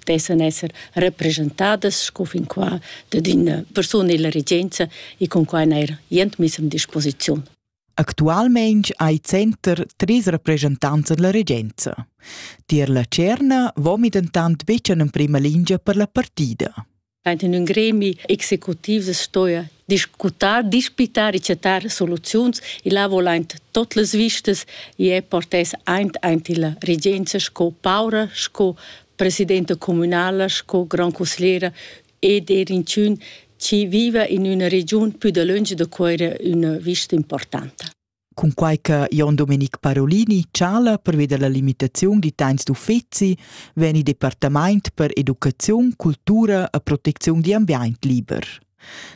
dessan esser representadas sco fin qua dad ina persuna illa regenza e con quai neir jent miss am disposiziun. Actualmein hai center tris rappresentanza della regenza. Tier la Cerna vomi dentant betg en prima lingia per la partida. Aint in ün gremi executiv stoja discutar, dispitar e chatar soluziuns. Il ha vol aint tot las vistas e è portess aint aint illa regenza sco paura, sco presidenta communala, sco grand consigliera ed er inchün chi viva in üna regiun pü dalöntsch da Cuera üna vista importanta. Cunquai che Jon Domenic Parolini chala pervi da la limitaziun da temps d'uffezi vegn il departament per educaziun, cultura e protecziun d'ambient liber.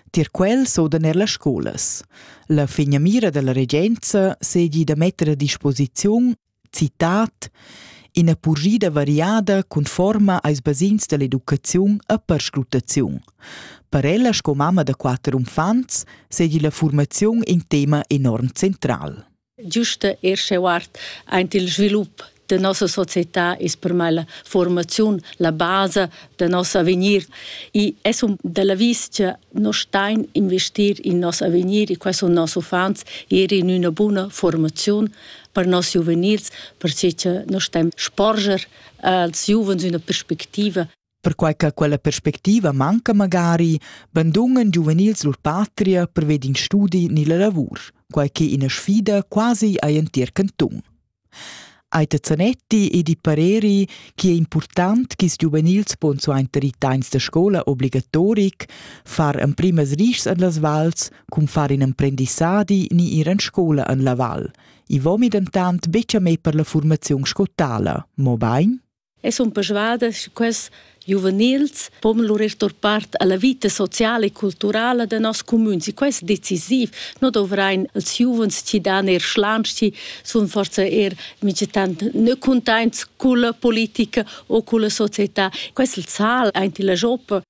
Tier quel s'odan er las scolas. La finamira dalla regenza seigi da metter a disposiziun Citat ina purschida variada conforma als basegns dall'educaziun e perscrutaziun. Per ella sco mamma da quater uffants seigi la formaziun in tema enorm central. Giusta er scheuart aint il svilup de nossa società ist per me la formaziun la base de nos avegnir e es un della vis che no stein investir in nos avegnir e quais sun nos uffants er in üna buna formaziun per nos giuvenils, perche che noi stem sporger als giuvens üna perspectiva Perquai che quella perspectiva manca magari bandungen giuvenils lur patria per ved in studi ni la lavur, quai che ina sfida quasi ai entir canton. Aita Zanetti e di pareri che è important che ils giuvenils pon suenter i teins da scola obligatoric far emprimas rischs an las vals cun far in emprendissadi ni ir en scola en la val. I vomi dentant betg a me per la formaziun scottala, mobain? E sono persuadas che questi giuvenils pon lur estor part alla vita sociale e culturale de nos communs. Questo è decisiv. Non dovrein als giovens ci dan er schlanci, sono forse er migetant ne contents con la politica o con la società. Questo il sal, anche la joppa.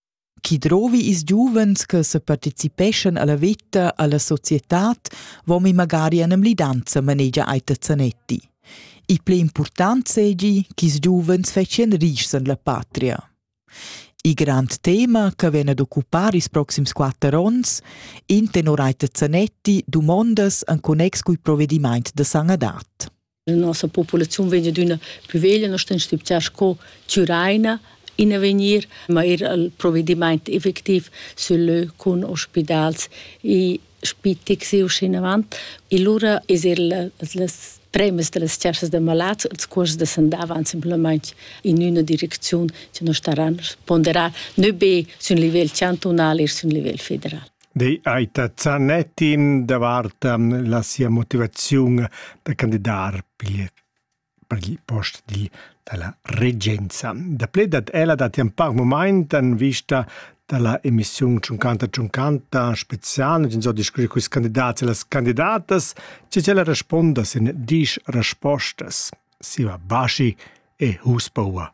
Chi drovi ils giuvens che separticipeschan alla veta, alla societad, vomi magari an emlidanza manegia Aita Zanetti. Il pli important segi ch'ils giuvens fetschian rischs en la patria. Il grand tema che vien ad occupar ils proxims quatter onns, in tenor Aita Zanetti dumondas en connex cul provedimaint da sanadat. La nossa populaziun vegn d'üna plü veglia, nos temps stiptià sco Tyraina in avegnir, ma er il provedimaint effectiv sül lö cun ospidals e spittics e uschinavant. E lura es er las premas da las chasas da malats, ils cuors da s'andavan simplamaing in üna direcziun che nos taran ponderar, nö be sün livel chantunal e sün livel federal. Dei hai ta zanet in davart la sia motivaziun da candidar pigl per il post di dalla regenza. Daplè dat ella datti un par momaint en vista dalla emissiun 50 50 spezial in so discutir con candidats e las candidatas che ella responda sin disch respostas. Siva Baschi e Husbauer.